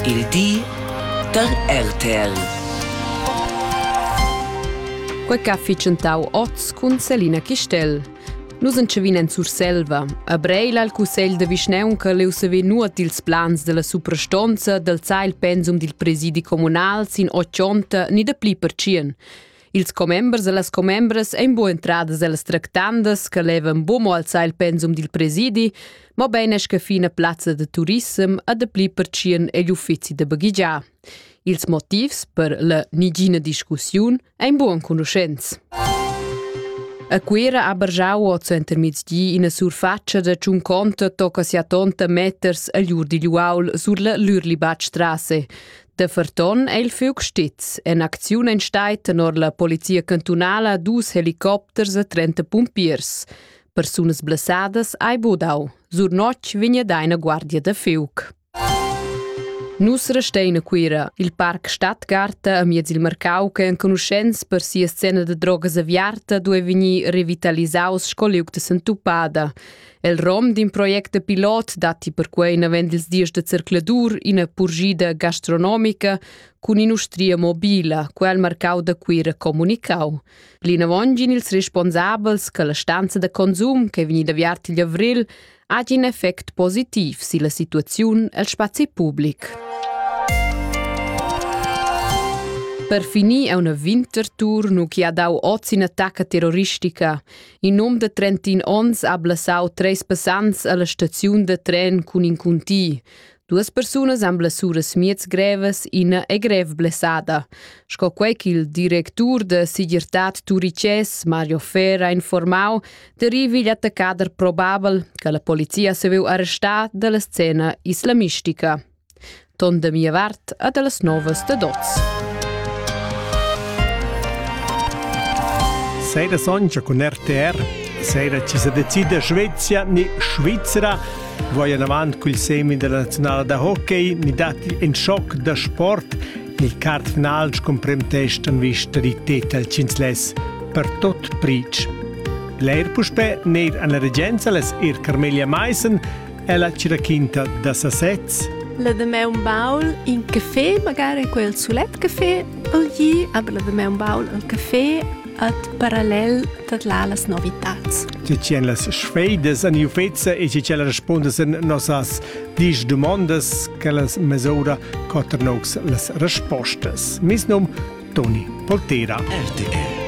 Il di da RTL. Quei che ha fitschentau oz cun Selina Chistel. Nus entschevin en Surselva. A Breil al cussegl de vischneunca leu sever nuot dils plans della suprastonza del zai il pensum dil presidi comunal sin ochonta ni de pli per tschien. Ils commembers e las commembras ein bu entradas ellas tractandas che levan bu mo alzar il pensum dil presidi, mobein esch che fina plazza de turissem e de pli pertschien egl uffizi de baghigiar. Ils motivs per la nigina discussiun ein bu enconuschents. A Cuira ha bargiau oz entermiezdi ina surfatscha da tschun conta tocca sia tonta meters agl ur digl uaul sur la Lürlibatstrasse. Da ferton è il fiug stiz. En acziun en stai tenor la polizia cantunala dus helicopters e 30 pumpiers. Persunas blessadas ai budau. Sur notg vigna daina guardia da fiug. Nus restein a Cuira, il parc Stadtgarta a miez il Marcau che enconuschents per sia scena da drogas aviarta due vegnir revitalisaus sco liug de Santupada. El rom d'in project da pilot datti perquai navend ils dies da zercladur ina purgida gastronomica cun in'ustria mobila, quel il marcau da Cuira comunicau. Plinavon gin ils responsabels che la stanza da consum che è vegnida aviarta igl avril ha in effect positiv sulla situazione el spazi pubblic. Per finir è una Wintertour nu chi ha dau oz in attacca terroristica. In um de 31 onns ha blassau treis passants alla staziun de tren cun in cunti. Duas persunas han blessuras miez grevas, ina è grev blessada. Sco quei ch'il directur de Sigirtad Turices, Mario Fer, ha informau, derivi igl attaccader probabel che la polizia se veu arrestar dalla scena islamistica. Ton da mia vart e da las novas dad oz. Sei da soncha cun RTR, sei da ci sa decida Svezia ni Svizzera, vuoi anavant cul semi della nazionale da hockey, ni datti in schock da sport, il card final con premtest an vista di tetal cinzles per tot pric. Leir puspe neir an la regenza les ir Carmelia Meissen, Ella cirachinta da sasez. La damaun baul in café, magari quel sulet café, o gli, aber la damaun baul al café at parallel dat là las novitats. Tgi en las sfeidas an iufezza e tgi respondas en nossas dis dumondas che las mesura cotter nox las respostas. Mis num Toni Poltera. RTL